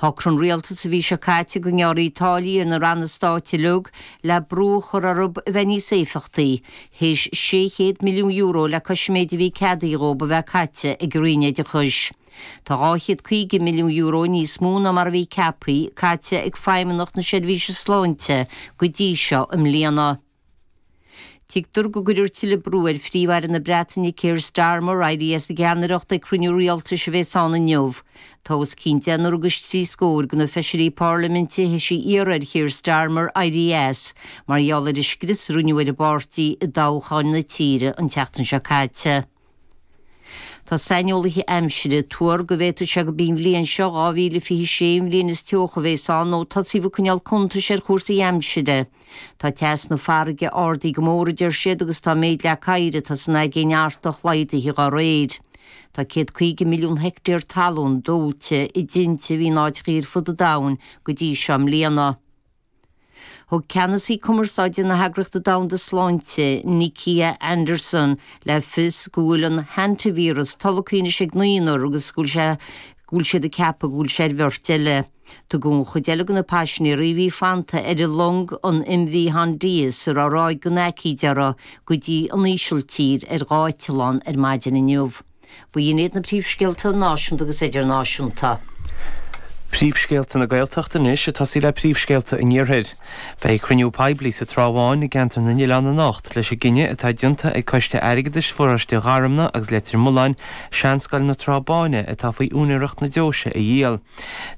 Shocraigh an Rialtas a bhí seo caite go ngearrfaí táillí ar na Ranna Stáit uilig le brú a chur orthu a bheith níos éifeachtaí, théis €600 milliún le cois an méid a bhí ceadaithe dhóibh a bheith caite ag an Roinn Oideachais. Tá €250 milliún níos mó ná mar a bhí ceaptha, caite ag Feidhmeannacht na Seirbhíse Sláinte go dtí seo i mbliana. Tuigtear go gcuirfear tuilleadh brú ar Phríomh-Aire na Breataine Keir Starmer éirí as an gceannaireacht ag cruinniú rialtais a bheas ann inniu. Tá os cionn deichniúr agus trí scór de na feisirí Parlaiminte théis iarraidh ar Keir Starmer éirí as mar gheall ar an scrios a rinneadh ar an bpáirtí i dtoghcháin na tíre an tseachtain seo caite. Tá saineolaithe aimsire ag tuar go bhféadfadh sé gob í an bhliain seo, 2026, an bhliain is teo a bheas ann nó ó tosaíodh ag coinneáil cuntais ar chúrsaí aimsire. Tá teas na farraige ardaithe go mór, a deir siad, agus tá an méid leac oighir atá san Aigéin Artach laghdaithe dá réir. Tá céad caoga milliún heictéar talún dóite i dtinte in áiteacha ar fud an domhain go dtí seo i mbliana. Thug Ceannasaí Cumarsáide na hEagrachta Domhanda Sláinte, Nikia Anderson, le fios go bhfuil an hantaivíreas tolgtha anois ag naonúr agus go bhfuil siad ag ceapadh go bhfuil sé ar bheirt eile. Tugadh an chuid eile de na paisinéirí a bhí fanta ar an long, an MV Hondius, a raibh ráig den aicíd uirthi, go dtí an Ísiltír ar dhá eitleán ar maidin inniu. Ba iad na príomhscéalta náisiúnta agus idirnáisiúnta. Príomhscéalta na Gaeltachta anois ag tosaí le príomhscéalta an Iarthair. Beidh cruinniú poiblí sa Trá Bháin i gceantar na nOileán anocht leis an gcinneadh atá déanta ag Coiste Airgeadais Pharóiste Gharumna agus Leitir Mulláin Seanscoil na Trá Báine atá faoi úinéireacht na deoise a dhíol.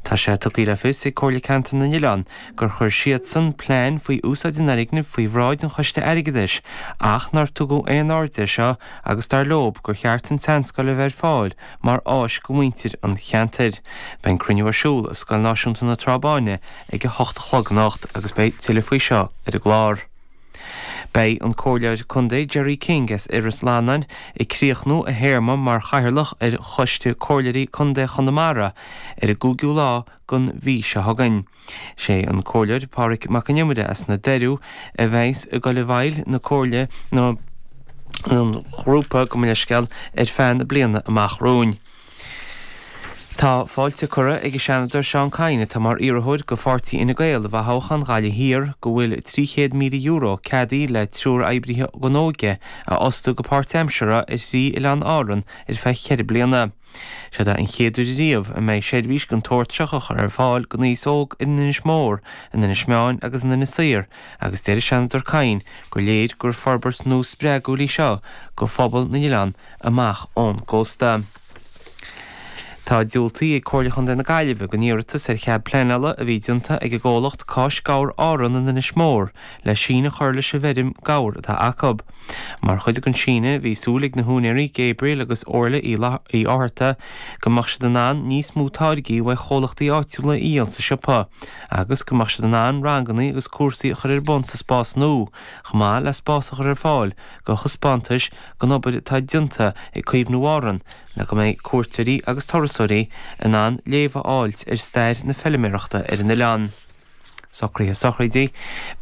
Tá sé tugtha le fios ag Comhairle Ceantair na nOileán gur chuir siadsan plean faoi úsáid an fhoirgnimh faoi bhráid an Choiste Airgeadais ach nár tugadh aon aird air seo agus dar leo gur cheart an tseanscoil a bheith ar fáil mar áis do mhuintir an cheantair. Beidh an cruinniú ar siúl i Scoil Náisiúnta na Trá Báine ag 8 a chlog anocht agus beidh tuilleadh faoi seo ar an gclár. Beidh an Comhairleoir Contae Gerry King as Iorras Fhlannáin ag críochnú a théarma mar Chathaoirleach ar Choiste Comhairleoirí Contae Chonamara ar an gcúigiú lá den mhí seo chugainn. Sé an Comhairleoir Pádhraic Mac an Iomaire as na Doireadha a bheas ag goil i bhfeighil na Comhairle nó an Ghrúpa Muiniseapail ar feadh na bliana amach romhainn. Tá fáilte curtha ag an Seanadóir Seán Kyne atá mar iarrthóir do Pháirtí Fhine Gael i bhfothoghchán Ghaillimh Thiar go bhfuil €300,000 ceadaithe le triúr oibrithe óige a fhostú go páirtaimseartha ar thrí Oileán Árann ar feadh ceithre bliana. Seod é an chéad uair riamh a mbeidh seirbhís den tsórt seo á chur ar fáil don aos óg in Inis Mór, in Inis Meáin agus in Inis Oírr agus deir Seanadóir Kyne gur léir gur forbairt nua spreagúil í seo do phobal na n-oileán amach ón gcósta. Tá diúltaithe ag Comhairle Chontae na Gaillimhe don iarratas ar chead pleanála a bhí déanta ag an gcomhlacht Cáis Gabhar Árann in Inis Mór le síneadh a chur leis an bhfeirm gabhair atá acu. Mar chuid den síneadh, bhí súil ag na húinéirí, Gabriel agus Orla Uí Fhátharta, go mbeadh siad in ann níos mó táirgí uaidh chomhlachtaí áitiúla a dhíol sa siopa agus go mbeadh siad in ann rangannaí agus cúrsaí a chur ar bun sa spás nua, chomh maith le spás a chur ar fáil do thaispeántais den obair atá déanta ag Caomhnú Árann le go mbeidh cuairteoirí agus turasóirí in ann léamh a fháilt ar stair na feiliméarachta ar an oileán. Socraithe Sochraidí,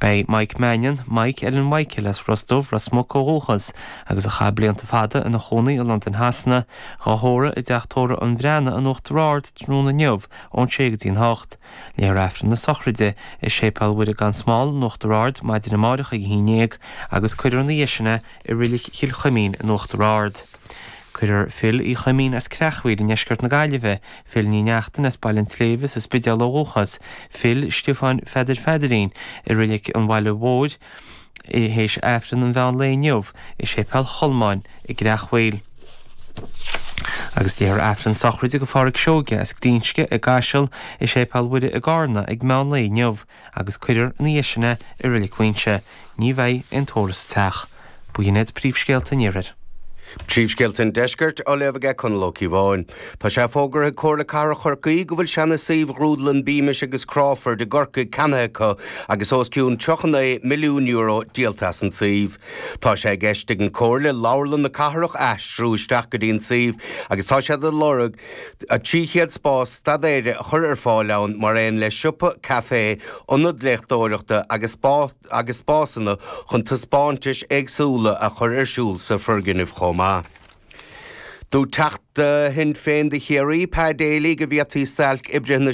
Beidh Mike Mannion, Mike Eileen Mhichael as Ros Dubh, Ros Muc ó dhúchas, agus a chaith blianta fada ina chónaí i Londain Shasana, dhá thórramh i dTeach Tórramh an Bhreathnaigh in Uachtar Ard tráthnóna inniu ón sé go dtí an hocht. Léifear Aifreann na Sochraide i Séipéal Mhuire Gan Smál in Uachtar Ard maidin amárach ag a haon dhéag agus cuirfear ina dhiaidh sin é i Rilic Chill Chuimín in Uachtar Ard. Cuirfear Phil Uí Choimín as Creachmhaoil i ndeisceart na Gaillimhe, Phil Ní Neachtain as Baile an tSléibhe sa Spidéal ó dhúchas, Phil Stiofáin Pheadair Pheadairín, i Reilig an Bhaile Mhóir i théis Aifreann an mheán lae inniu i Séipéal Cholmáin i gCreachmhaoil. Agus léifear Aifreann sochraide go Phádraig Seoige as Glinsce i gCaiseal i Séipéal Mhuire i gCárna ag meán lae inniu. agus cuirfear ina dhiaidh sin é i Reilig Mhaínse, ní bheidh aon tórramh sa teach. B'in iad Príomhscéalta an Iarthair. Príomhscéalta an Deiscirt á léamh aige Conall Ó Ciobháin. Tá sé fógartha ag Comhairle Cathrach Chorcaí go bhfuil seana suíomh Ghrúdlann Beamish agus Crawford i gCorcaigh ceannaithe acu agus os cionn €35 milliún díolta as an tsuíomh. Tá sé i gceist ag an Comhairle leabharlann na cathrach a aistriú isteach go dtí an suíomh agus tá siad ag lorg 300 spás staidéir a chur ar fáil ann mar aon le siopa, caifé, ionad léachtóireachta agus spásanna chun taispeántais éagsúla a chur ar siúl sa foirgneamh chomh maith. Dúirt Teachta Shinn Féin do Chiarraí, Pa Daly go bhféadfaí stailc oibrithe na.